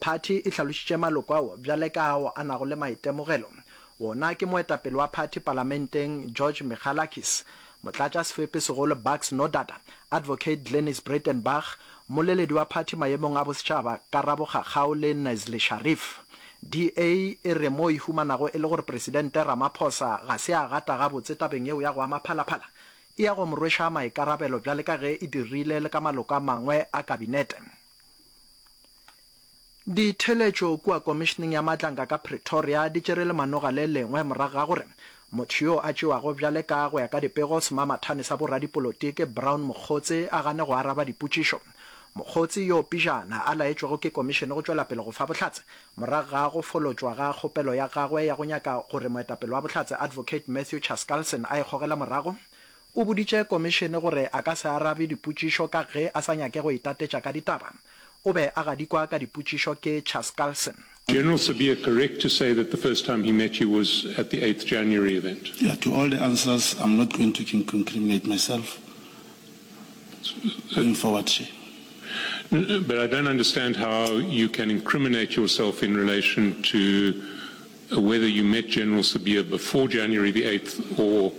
Phathi e hlalošitše maloko ao bjale ka ao a nago le maitemogelo. Wona ke moetapele wa phathi palamenteng George Michalakis, motlatšasefepi-segolo Bucks Nodada, Advocate Glenis Breitenbach, mmoleledi wa phathi mayemong a bosetšhaba Karabo Kgakgau le Nazli Sharif. DA e re mo e humanago e le gore Presidente Ramaphosa ga se a gata gabotse tabeng yeo ya go ama phalaphala, e ya go mo rweša maikarabelo bjale ka ge e dirile le ka maloko a mangwe a kabinete. Ditheeletšo kua Komišeneng ya Matlanka ka Pretoria di tšere lemanoga le lengwe morago ga gore motho yo a tšewago bjale ka go ya ka dipego semamathane sa boradipolotiki Brown Mokgotsi a gane go araba dipotšišo. Mokgotsi, yo pejana a laetšwego ke Komišene go tšwela pele go fa bohlatse morago ga go folotšwa ga kgopelo ya gagwe ya go nyaka gore moetapele wa Bohlatse Advocate Matthew Chaskalson a e gogele morago, O boditše komišene gore a ka se arabe dipotšišo ka ge a sa nyake go itatetša ka ditaba. O be a gadikwa ka dipotšišo ke Chaskalson. General Sibiya correct to say that the first time he met you was at the eighth January event? Yeah, to all the answers I'm not going to incriminate myself going forward here. But I don't understand how you can incriminate yourself in relation to Whether you met General Sibiya before January the eighth or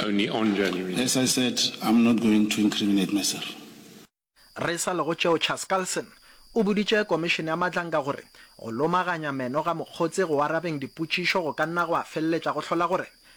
only on January. As I said, I'm not going to incriminate myself. Re sa le go tšeo, Charles Carlson o boditše Komišene ya Matlanka gore go lomaganya meno ga Mokgotse go arabeng dipotšišo go ka nna gwa feleletša go hlola gore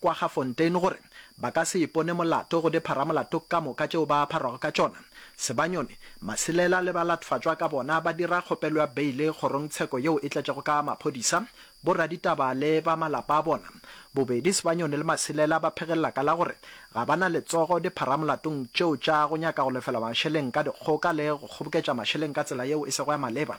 kwa ga Fontaine gore ba ka se ipone molato go dipharamolato ka moka tšeo ba pharwago ka tšona. Sebanyoni, Masilela le balatfatšwa ka bona ba dira kgopelo ya beile kgorongtsheko yeo e tletšego ka maphodisa, boraditaba le ba malapa a bona. Bobedi Sebanyoni le Masilela ba phegelela ka la gore ga ba na letsogo dipharamolatong tšeo tša go nyaka go lefela mašeleng ka dikgoka le go kgoboketša mašeleng ka tsela yeo e sego ya maleba.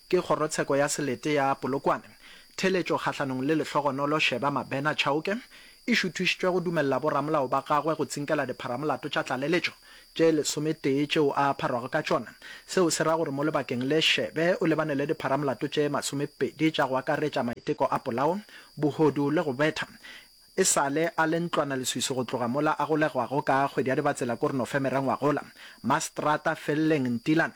Ke kgorotsheko ya selete ya Polokwane, theeletšo kgahlanong le lehlogonolo Sheba Mabena Chauke e šuthišitšwe go dumelela boramolao ba gagwe go tsinkela dipharamolato tša tlaleletšo tše lesometee tšeo a apharwago ka tšona. Seo se ra gore mo lebakeng le, Shebe o lebane le dipharamolato tše masomepedi tša go akaretša maiteko a polao, bohodu le go betha. E sa le a le ntlwanaleswiswi go tloga mola a golegwago ka kgwedi ya Dibatsela ko Renofe merengwagola, Mastrata Felleng Ntilane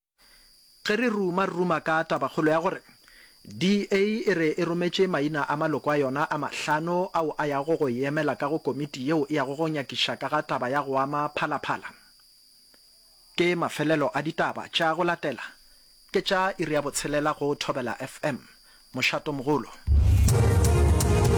Ge re ruma ruma ka tabakgolo ya gore DA e re e rometše maina a maloko a yona a mahlano ao a yago go e emela ka go komiti yeo e yago go nyakiša ka ga taba ya go ama Phalaphala, ke mafelelo a ditaba tša go latela, ke tša iri ya botshelela go Thobela FM. Mošatomogolo.